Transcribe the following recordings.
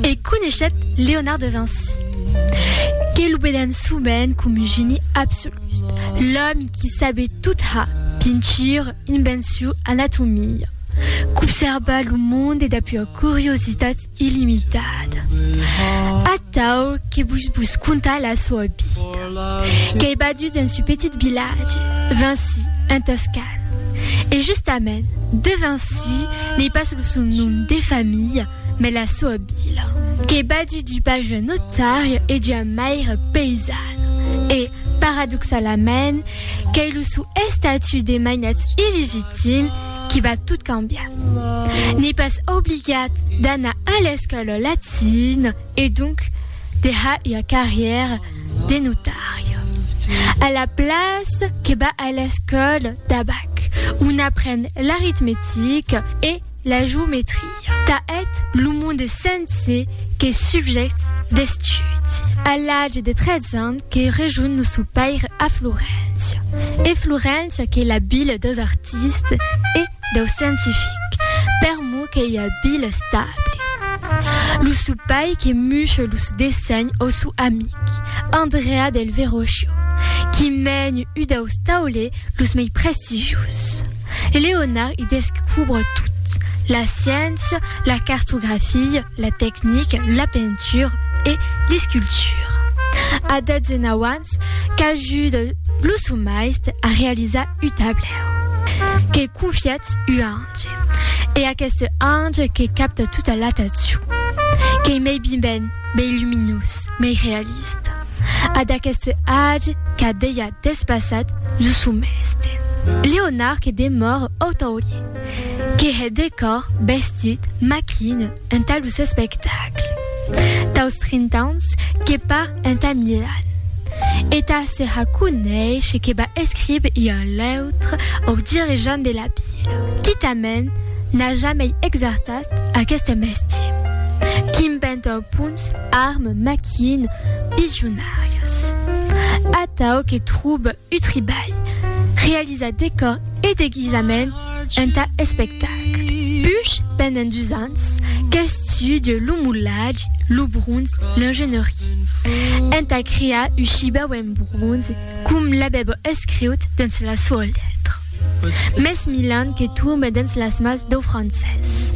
E coneishèt Leonard de Vinci, que lo vedèm sovent com un geni absolut, l'òmi qui sabet tot ha, pintura, invencion, anatomia, qu'observa lo monde dab ua curiositat illimitada. Atau que vos vos contar la soa vida. Qu'ei badut dens ua petit vilatge, Vinci, en Toscan. E justament, de Vinci n'ei pas lo son nom de familha, mas la soa vila. Qu'ei badut d'ua paire notària e d'ua maire païsana. E, paradoxalament, qu'ei lo sou estatut de mainat illegitim qui va tot cambiar. N'ei pas obligat d'anar a l'escòla latina e donc de har ua carrièra, de notari. A la place que va a l'escòla d'abac, on apren l'aritmetica e la geometria. Tà eth lo monde sense que subjèctes d'estudi. A l'age de 13 ans que rejonh lo sò paire a Floréncia. E Floréncia qu'ei la vila deus artistes e. Dau scientific, per mo que i a bil estable. Lo supai que muche los dessenhs au sou amic, Andrea del Verrocchio, qui mèn u daus taulè los mei prestigius. Leonard i descubre tot, la sciéncia, la cartografia, la tecnica, la pentura e l'escultura. A 19 ans, qu'ajuda lo sou maiste a realizar u tablet. que cofiat ua ange, e aqueste ange que capta tota l'atacion, qu'ei mei biben, mei luminós, mei realista, a d'aqueste age qu'a dejà despassat lo sou mèste. Leonard que demòre otaulier, que hè de còr, bestit, maquina, Entà lo s'espectacle daus 30 ans que par entà Milan e tà se raconéisher que ba escribe ua leutre au dirigent de la pila, quitament n'a jamei exerçat aqueste mestier, qu'inventa au punts armes, maquines, pijonarias, atau que trobe Utribalh, realizar decòr e deguisament entà espectacle. Puish pendent dus ans qu'estudia lo molatge, lo bronze, l'ingénierie, entà crear un chibau en bronze com l'avèba escriut dens la soa letra. Mès Milan que torna dens las mans dau francés.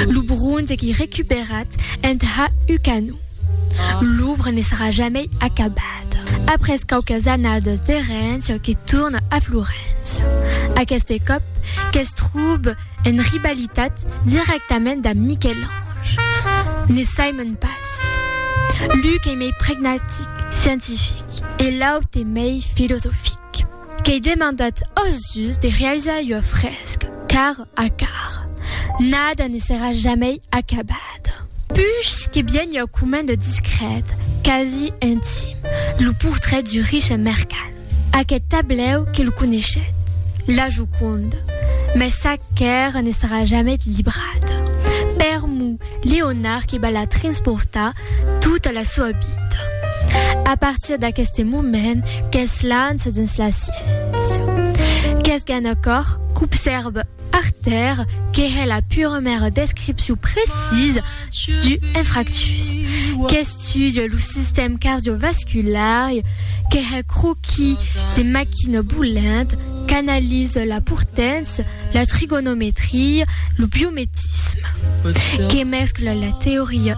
Lo bronze qu'ei recuperat entà un canon. L'òbra ne serà jamei acabada. Après quauques annadas de rença que torna a Florença. Aqueste còp que's tròb en rivalitat dirèctament damb Miquel-Ange. Ne saimon pas. L'un qu'ei mei pragmatic, scientific, e l'aute mei filosofic. Qu'ei demandat ós dus de realizar ua fresca, car a car, nada ne serà jamei acabat. Puish que bien ua comenda discrèt, quasi intim, lo portret du riche mercant. Aqueth tablèu que lo coneishet, La Joconde, mès sac qu'èra ne serà jamei librat. Permou Leonard que va la transportar Tota la soa vida. A partir d'aqueste moment qu'es lança dins la sciéncia. Qu'es gen a còr qu'obsèrva Arter que hè la puremèra descripcion precisa du infractus, qu'estudia lo sistèm cardiovasculari, que hè croquis de maquina bolent, qu'analisa la portància, la trigonometria, lo biometisme. Que mescla la teoria